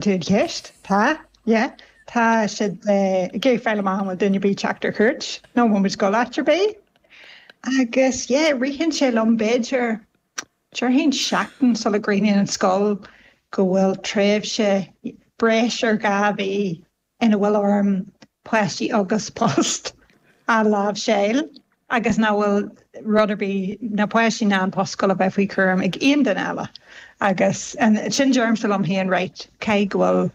Tús ceist? Tá, yeah. Tá siad ag iarraidh fáil amach an bhfuil duine ar bith ag teacht ar chuairt nó an bhfuil muid ag dul áit ar bith. Agus yeah, ritheann sé liom b'fhéidir, déarfainn seachtain sula gcríochnaíonn an scoil go bhfuil tréimhse breis ar dhá mhí ina bhfuil orm páistí agus post a láimhseáil agus nach bhfuil rud ar bith, na páistí ná an post scoile, bheith faoi chúram ag aon duine eile. Agus ansin deirimse liom féin, right, caithfidh go bhfuil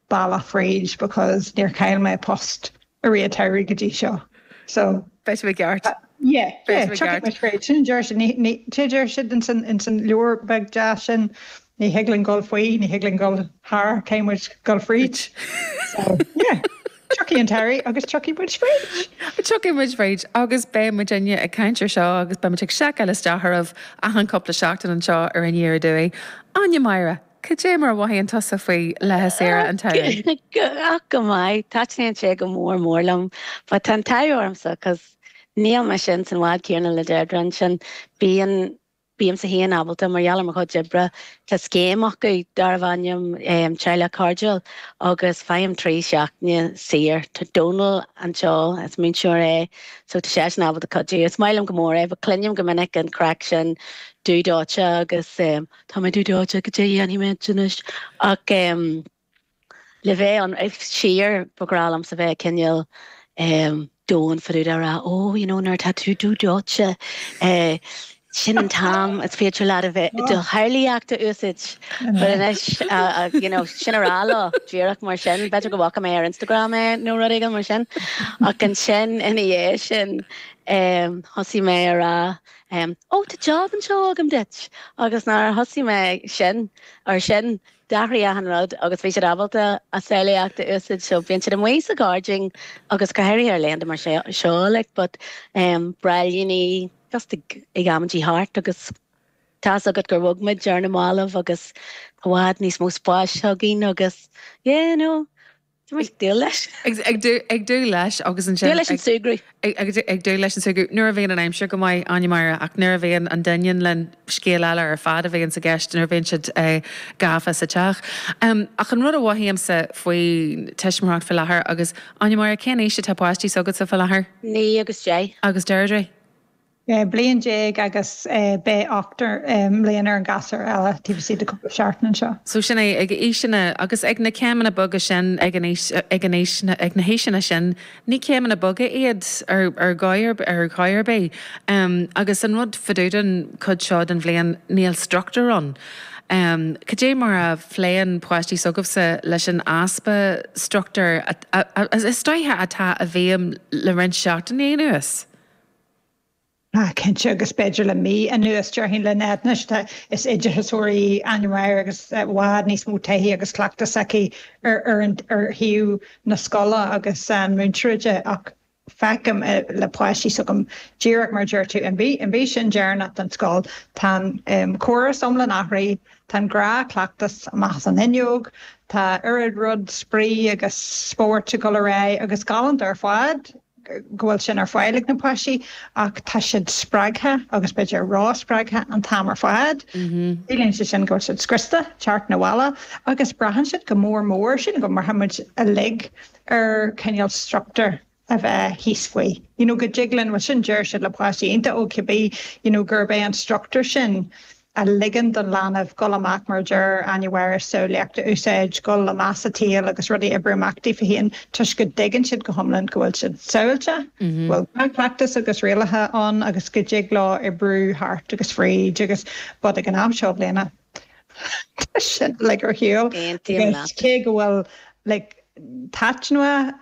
bealach fríd because níor chaill mé post i rith an tsamhraidh go dtí seo. So. Beidh tú i gceart. Yeah, yeah, tiocfaidh muid fríd. Sin a deir siad. Ní, ní, sé a deir siad in san, in san leabhar beag deas sin, Ní thig linn dul faoi, ní thig linn dul thar, caithfidh muid dul fríd. So, yeah. Tiocfaidh an tarraingt agus tiocfaidh muid fríd! Tiocfaidh muid fríd agus beidh muid inniu ag caint ar seo agus beidh muid ag seiceáil isteach oraibh achan cúpla seachtain anseo ar Aniar Aduaidh. Áine Máire, cad é mar a mhothaíonn tusa faoi laethanta saoire an tsamhraidh? Ach go maith, taitníonn sé go mór mór liom but tá an t-ádh ormsa 'cause níl mise ins an bhád céanna le Deirdre ansin, bíonn Bímse féin ábalta, mar gheall ar mo chuid oibre, tá scéim acu darbh ainm Teaghlach Cairdiúil agus faighim trí seachtaine saor. Tá Dónall, an fear céile, is múinteoir é, so tá seisean ábalta cuidiú. Is maith liom go mór é, but cluinim go minic an chraic sin dúdóite agus tá mé dúdóite cad é a dhéanfaidh mé anois ach. Le bheith ionraic, sure, ba bhreá liomsa bheith cineál domhain fá dtaobh de a rá, Ó, you know, nuair atá tú dúdóite, sin an t-am is féidir leat a bheith, do shamhlaíocht a úsaid. But anois, you know, tsín á rá leo, díreach mar sin, b'fhéidir go bhfaca mé ar Instagram é nó rud éigin mar sin. Ach ansin, ina dhiaidh sin, thosaigh mé a rá, Ó, tá jab anseo agam duit! Agus nuair a thosaigh mé sin, ar sin, D'athraigh achan rud agus bhí siad ábalta a samhlaíocht a úsaid so bíonn siad amuigh sa gáirdín agus go háirithe ar laethanta mar seo like but em b'fhearr leo just ag ag amaidí thart agus tá's agat gur bhog muid ar na mallaibh agus tá i bhfad níos mó spáis againn agus yeah no. Ag dúil leis. Ag dúil leis agus ansin. Dúil leis an tsamhradh. Ag dúil leis an tsamhradh. Nuair a bhíonn an aimsir go maith, Áine Máire, ach nuair a bhíonn an doineann linn, scéal eile ar fad a bhíonn i gceist nuair a bhíonn siad gafa sa teach. Ach an rud a mhothaímse faoi tuismitheoireacht faoi láthair, agus Áine Máire, cén aois atá páistí s'agatsa faoi láthair? Naoi agus deich. Agus Deirdre? 16 bliain agus beidh ocht mbliana ar an gasúr eile taobh istigh de chúpla seachtain anseo. So sin é, ag aoiseanna, agus ag na céimeanna beaga sin, ag an aois, ag an aois, ag na haoiseanna sin, ní céimeanna beaga iad ar, ar dhóigh ar, ar dhóigh ar bith. Agus an rud fá dtaobh den chuid seo den bhliain, níl struchtúr ann. Cad é mar a phléann páistí s'agaibhse leis an easpa struchtúir a, a, a, is dóiche atá i bhfeidhm le roinnt seachtainí anuas? Tá, cinnte, agus b'fhéidir le mí anuas, déarfainn le Ned anois, tá, is oideachasóir í Áine Máire agus i bhfad níos mó taithí agus cleachtais aici ar shuíomh na scoile agus na múinteoireachta ach feicim le páistí s'agam, díreach mar a deir tú, an mhí sin deireanach den scoil, tá an córas iomlán athraithe, tá an gnáthchleachtas amach as an fhuinneog, tá oiread spraoi agus spóirt ag dul ar aghaidh, agus galánta ar fad! go bhfuil sin ar fáil ag na páistí ach tá siad spreagtha agus b'fhéidir a rá spreagtha an t-am ar fad. Ciallaíonn sé sin go bhfuil siad scriosta, teacht 'na bhaile agus braitheann siad go mór mór sin go mbraitheann muid uilig ar cineál structúr a bheith thíos faoi you know go dtig linn bhuel sin deir siad le páistí iontach óg cibé you know gurb é an structúr sin a ligeann don leanbh dul amach mar a deir Áine Máire is samhlaíocht a úsáid, dul i measc an tsaoil agus rudaí a oibriú amach daofa féin toisc go dtuigeann siad go hiomlán go bhfuil siad sábháilte, go bhfuil dea-chleachtas agus rialacha ann agus go dtig leo oibriú thart agus fríd agus but ag an am seo den bhliain. Tá sin uilig ar shiúl. Aontaím leat. Agus cé go bhfuil like taitneamhach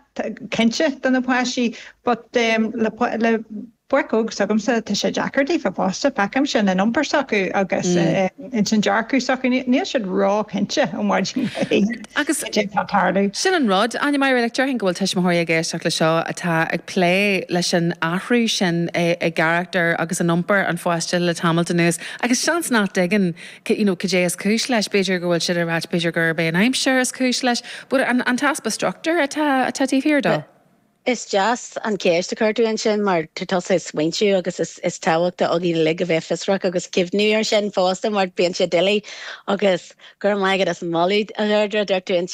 cinnte do na páistí but le le Páistí óga s'agamsa, tá sé deacair daofa fosta, feicim sin in iompar s'acu agus ins an dearcadh s'acu, níl siad ró-chinnte ó mhaidin go hoíche agus cad é atá ag tarlú. Sin an rud, Áine Máire, déarfainn go bhfuil tuismitheoirí ag éisteacht le seo atá ag plé leis an athrú sin i gcarachtar agus in iompar an pháiste le tamalt anuas agus seans nach dtuigeann siad cad é is cúis leis, b'fhéidir go bhfuil siad ag ráit b'fhéidir gurb é an aimsir is cúis leis, but an t-easpa structúir atá taobh thiar de. Is deas an cheist a chuir tú ansin mar tá tusa ag smaointiú agus is tábhachtach dúinn uilig a bheith fiosrach agus cuimhniú ar sin fosta mar bíonn sé doiligh agus Go raibh maith agat as an mholadh a Dheirdre a dúirt tú ansin.